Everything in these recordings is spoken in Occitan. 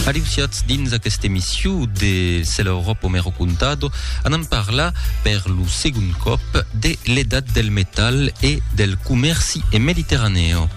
Aliusiatz dins aquesta emission de Se l'Europa o me recontado, anam parlar per lo segon còp de l'edat del metal e del comèrci en Mediterranèo.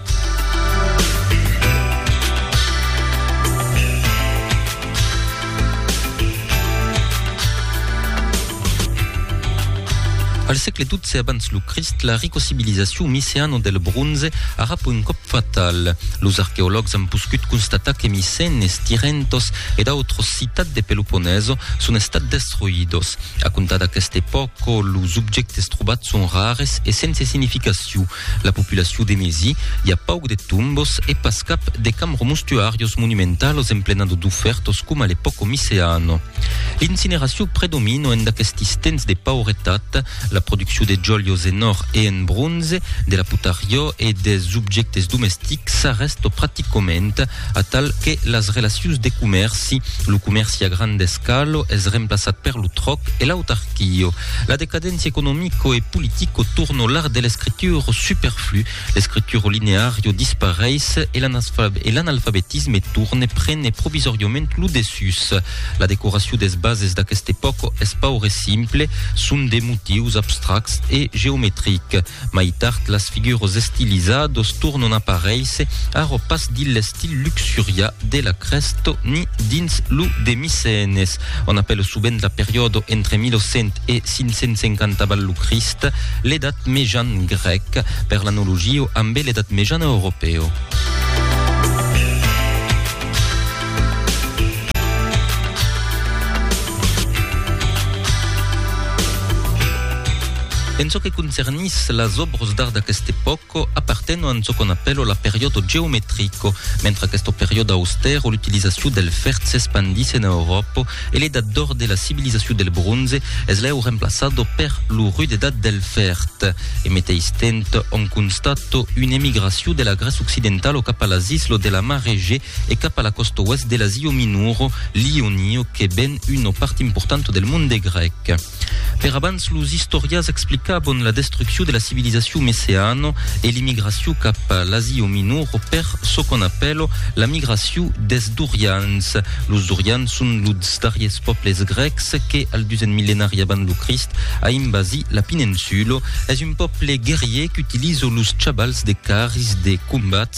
Al sègle XII abans lo Crist, la ricocivilizacion micèana del bronze arrapa un còp fatal. Los arqueològs an poscut constatar que Micenes, Tirentos e d'autras citats de Peloponeso son estats destruidos. A comptar d'aqueste pòca, los objèctes trobats son rares e sense significacion. La populacion de Mesi i a pauc de tombos e pas cap de camromustuarios monumentalos en plena de dufertos coma le poco miceano. L'incineracion predomino en d'aquestis temps de pauretat, la produccion de jolios en or e en bronze, de la putariò e des objectes domestics s'arrèsto practicament, atal que las relacions de comèrci, lo comèrci a grand escalo es remplaçat per lo tròc e l'autarquio. La decadéncia economico e politico torno l'art de l'escrituro superflu, l'escrituro lineario dispareis e l'analfabetisme torne prene provisoriament lo dessús. La decoracion des bases d'aqueste pòco es paure simple, son de motius abstracts e geometrics. Mai tard las figures estilizados tornon aparéisser, ara pas dins l'estil luxurià de la Crèsto ni dins lo de Micènes. On apèla sovent la periòda entre 1100 e 550 avant lo Crist l'Edat Mejan grèc, per l'analogia ambe l'Edat Mejana europèa. En çò que concernís las òbras d'art d'aquesta epòca, apartenon en çò qu'on apèla la periòda geometrica. Mentre aquesta periòda austèra l'utilizacion del fèrre s'espandís en Euròpa, e l'edat d'òr de la civilizacion del bronze es lèu remplaçada per lo rut edat del fèrrt. E meteis temps òm constata una emigracion de la Grèce occidentala cap a las islas de la mar Egèa e cap a la còsta oèst de l'Asia Minora, l'Ionio, que ven una part importanta del monde grèc. Per abans los istorias explicavon la destruccion de la civilisacion meceano e l'immigracion cap a l'Asia Minor o per çò qu'on apèlo la migracion des Dorians. Los Dorians son los darriers pòbles grècs que, al dusen millenari abans lo Crist, a invasi la peninsula. Es un pòble guerrier qu'utilizo los chabals de carris de combats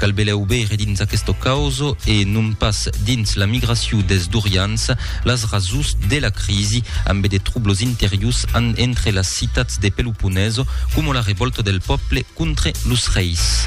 Cal belèu veire dins aquesta causa, e non pas dins la migracion des dorians, las rasons de la crisi, ambe de trublos interiors an entre las citats de Peloponèso, coma la revòlta del pòble contre los reis.